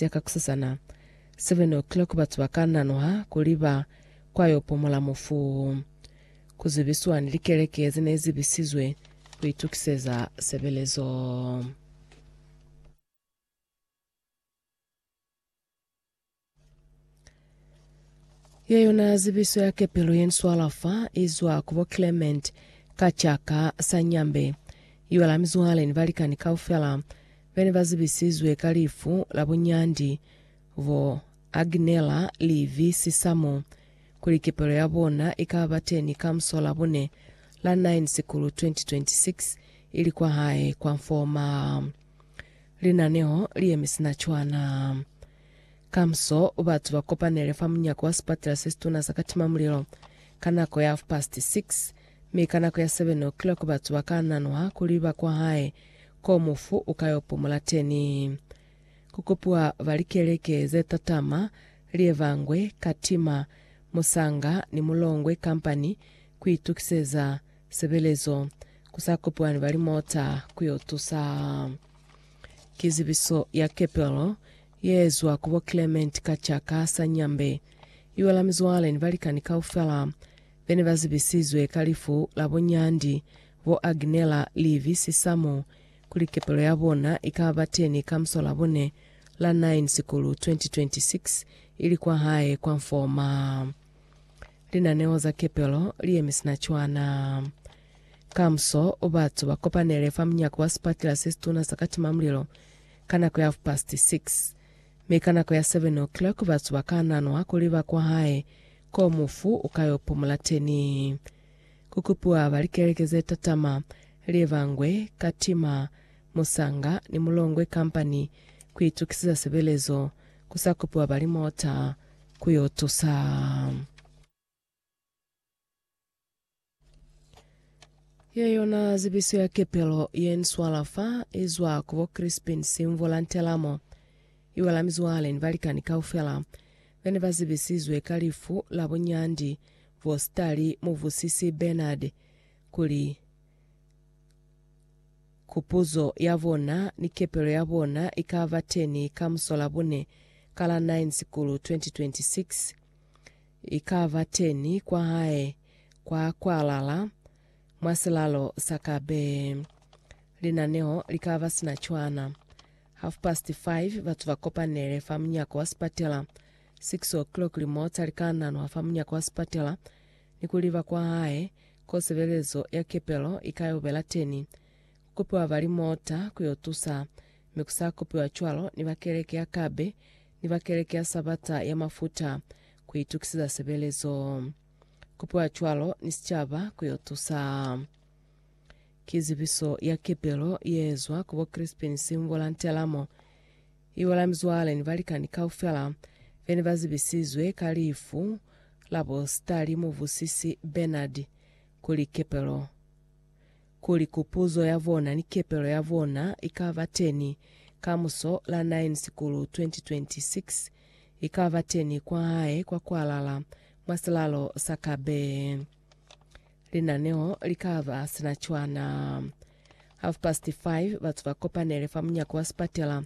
ya ka kusasana, seven o'clock, batu ba ka nanuha kuli ba kwa yo pumula mufu. Ku zibiswa ni likeleke ze ne zi bisizwe ku itukiseza sebelezo. Ye yona zibiso ya kepelo ye nswala fa izwa ku bo Clement ka caka sa Nyambe. Iwa la mizwale ni balikani kaufela bene ba zibisizwe ka lifu la bo Nyandi, bo Agnela, Livi, Sisamo, kuli kepelo ya bona ikaba bateni ka musola bone la 9 Sikulu 2026 ili kwa hae kwa Mfoma. Linaneho liyemi sina cwana. Kamuso, batu ba kopanele fa munyako wa sipatela se situna sa katimamulilo ka nako ya hafupasiti 6, mi ka nako ya 7 o'clock batu ba ka nanuha kuli ba kwahae ko mufu u ka yo pumula teni. Ku kopiwa ba likeleke ze tatama, lievangwe, katima, musanga, ni mulongwe kampani ku itukiseza sebelezo, ku sa kopiwa ni ba limota ku yo tusa. Ki zibiso ya kepelo Yeezwa ku bo Clement ka ca ka sa Nyambe, iwa la mizwale ni balikani kaufela bene ba zibisizwe ka lifu la bo Nyandi, bo Agnela, Livy, Sisamo, kuli kepelo ya bona ika ba teni ka muso la bone la 9 Sikulu 2026 ili kwa hae kwa Mfoma. Linaneo za kepelo li yemi sina cwana. Kamuso, batu ba kopanele fa munyako wa sipatela se situna sa katimamulilo ka nako ya half-past six, mi ka nako ya seven o'clock batu ba ka nanwa kuli ba kwahae ko mufu u ka yo pumula teni. Ku kupiwa ba likeleke ze tatama, Lievangwe, Katima, Musanga, ni Mulongwe Company ku itukisiza sebelezo, ku sa kupiwa ba limota ku yo tusa. Ye yona zibiso ya kepelo ye nswala fa izwa ku bo Crispin Simvula Ntelamo, iwela mizwale ni balikani kaufela bene ba zibisizwe ka lifu la bunyandi bwo sitali Muvusisi Bernard kuli kupuzo ya bona ni kepelo ya bona ikaba teni ka musola bune ka la 9 Sikulu 2026. Ikaba teni kwa hae kwa kwalala mwa silalo sa ka bee. Linaneo likaba sina cwana. Half past five batu ba kopanele fa munyako wa sipatela. Six o'clock limota li ka nanwa fa munyako wa sipatela ni ku liba kwa hae ko sebelezo ya kepelo i ka yo bela teni. kupiwa ba limota ku yo tusa, mi ku sa kupiwa cwalo ni ba keleke ya kabe ni ba keleke ya Sabata ya mafuta ku itukisiza sebelezo. Kupiwa cwalo ni sicaba ku yo tusa. Ki zibiso ya kepelo ye zwa ku bo Crispin Simvula Ntelamo, i bo la mizwale ni balikani kaufela be ne ba zibisizwe ka lifu la bo Sitali Muvusisi Bernard kuli kepelo. kuli kupuzo ya bona ni kepelo ya bona ikaba teni kamuso la 9 Sikulu 2026, ikaba teni kwa hae kwa kwalala mwa silalo sa Kabe. Linaneo likaba sina cwana. Half past five batu ba kopanele fa munyako wa sipatela.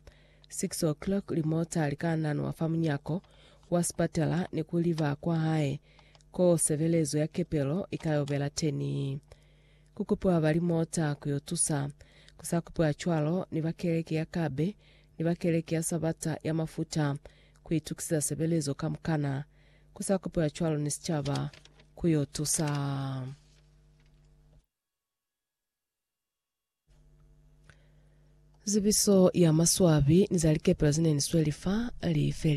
Six o'clock limota lika nanwa fa munyako wa sipatela ni kuliba kwa hae ko sebelezo ya kepelo ikayobela teni. Kukupiwa ba limota kuyo tusa, kusakupiwa cwalo ni ba keleke ya kabe ni ba keleke ya Sabata ya mafuta kuitukisiza sebelezo kamukana, kusakupiwa cwalo ni sicaba kuyo tusa. Zibiso ya maswabi ni za likepelo zene ni sweli fa lifeli.